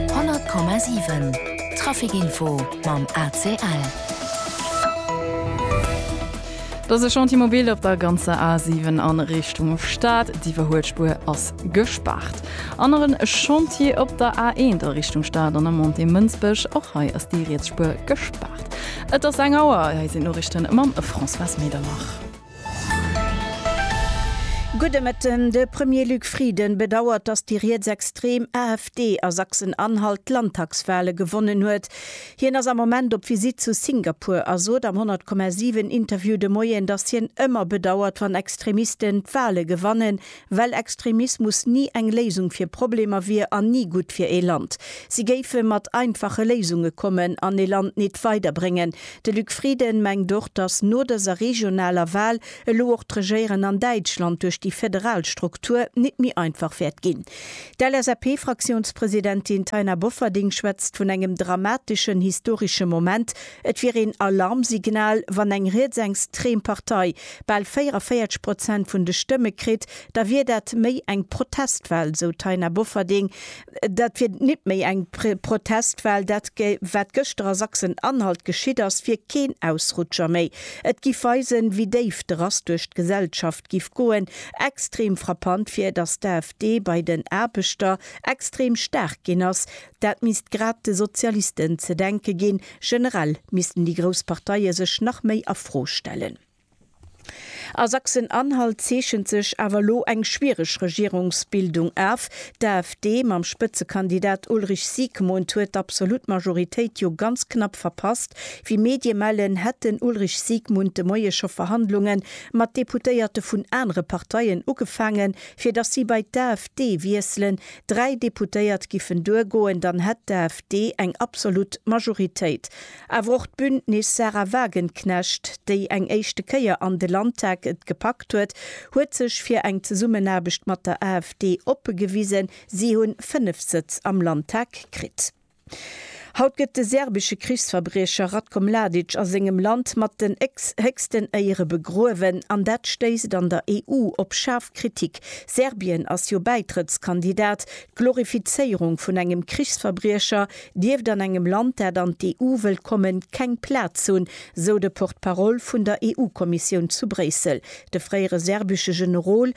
100,7 Trafic Info mam ACL. Et ass e Chantier mobil op der ganzer A7 a Richtung Stad. D'Iwwerhuelspuer ass gespaart. Anere Chantier op der A1 a Richtung Stad an der Montée Mënsbech. Och hei ass déi riets Spuer gespaart. Et ass eng Auer. Hei sinn d'Noriichte mam Françoise Medernach. Gudde Mëtten. De Premier Luc Frieden bedauert, datt déi rietsextrem AfD a Sachsen-Anhalt d'Landtagswale gewonnen huet. Hien ass am Moment op Visitt zu Singapur a sot am 100,7 Interview de Moien, datt hien ëmmer bedauert, wann Extremisten d'Wale gewannen, Well Extremismus ni eng Léisung fir Problemer wier an ni gutt fir ee Land. Si géife mat einfache Léisunge kommen an ee Land nit weiderbréngen. De Luc Frieden mengt och, datt no dëser regionaler Wal elo och d'Regéieren an Däitschland duerch déi federal Struktur nit méi einfach wäert ginn. D'LSAP-Fraktiounspresidentin Taina Bofferding schwätzt vun engem dramateschen historesche Moment Et wier een Alarmsignal, wann eng rietsengstrem Partei bal 44 Prozent vun de Stëmme kritt, da wier dat méi eng Protestwal, esou d'Taina Bofferding. Dat wier nit méi eng Protestwal. Dat wat gëschter a Sachsen-Anhalt geschitt ass, wier keen Ausrutscher méi. Et giff weisen, wéi déif de Rass duerch d'Gesellschaft giff goen. Extrem frappant wier, datt d'AfD bei den Aarbechter extrem staark ginn ass, Dat misst grad de Sozialisten ze denke ginn. Generell missten déi grouss Parteie sech nach méi a Fro stellen. A Sachsen-Anhalt zeechent sech awer elo eng schwiereg Regierungsbildung af. D'AfD mam Spëtzekandidat Ulrich Siegmund huet d'absolut Majoritéit jo ganz knapp verpasst. Wéi Medie mellen, hätt den Ulrich Siegmund de Moie scho Verhandlunge mat Deputéierte vun anere Parteien ugefaangen, fir datt si bei d'AfD wiesselen. dräi Deputéiert giffen duergoen, dann hätt d'AfD eng absolut Majoritéit. Awer och d'Bündnis Sahra Wagenknecht, déi eng éischte Kéier an de Landtag et gepackt huet, huet sech fir eng Zesummenaarbecht mat der AfD oppe gewisen. Si hunn fënnef Sëtz am Landtag kritt. Haut gëtt de serbesche Krichsverbriecher Ratko Mladic a sengem Land mat den héchsten Éiere begruewen, an dat stéisst an der EU op schaarf Kritik. Serbien ass jo Bäitrëttskandidat. D'Glorifizéierung vun engem Krichsverbriecher dierft an engem Land, dat an d'EU wëllt kommen, keng Plaz hunn, sou de Porte-parole vun der EU-Kommissioun zu Bréissel, de fréiere serbesche Generol.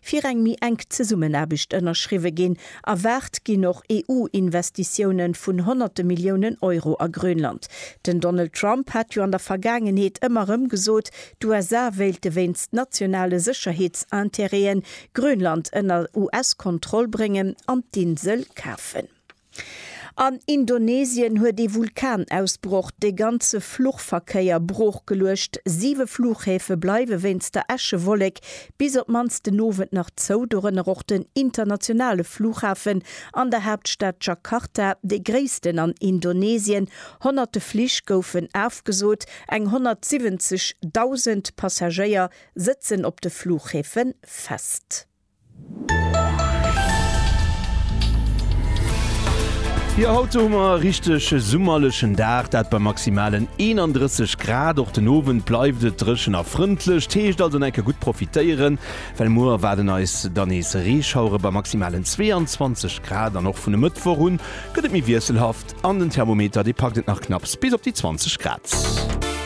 fir eng méi enk Zesummenaarbecht ënnerschriwwe ginn. Erwaart ginn och EU-Investitioune vun honnerte Milliounen Euro a Grönland. Den Donald Trump hat jo an der Vergaangenheet ëmmer erëm gesot, d'USA wéilte wéinst nationale Sécherheetsinterêten Grönland ënner US-Kontroll bréngen an d'Insel kafen. An Indonesien huet ee Vulkanausbroch de ganze Fluchverkéier broochgeluecht. Siwe Fluchhäfe bleiwe wéinst der Äschewollek bis op d'mannst den Owend nach zou, dorënner och den internationale Fluchhafen an der Haaptstad Jakarta, dee gréissten an Indonesien. Honnerte Flich goufen afgesot, eng 170.000 Passagéier sëtzen op de Fluchhäfe fest. Jo haut hu mer e richteg summerlechen Dag, dat bei maximalen 31 Grad. Och den Owend bleift et dréchen a frëndlech, t heescht also en enke gutt profitéieren, well muer waarden eis dann nees Reeschauere bei maximalen 22 Grad. An och vun e Mëttwoch un gëtt et méi wiesselhaft an den Thermometer dee packt et nach knapps bis op déi 20 Grad.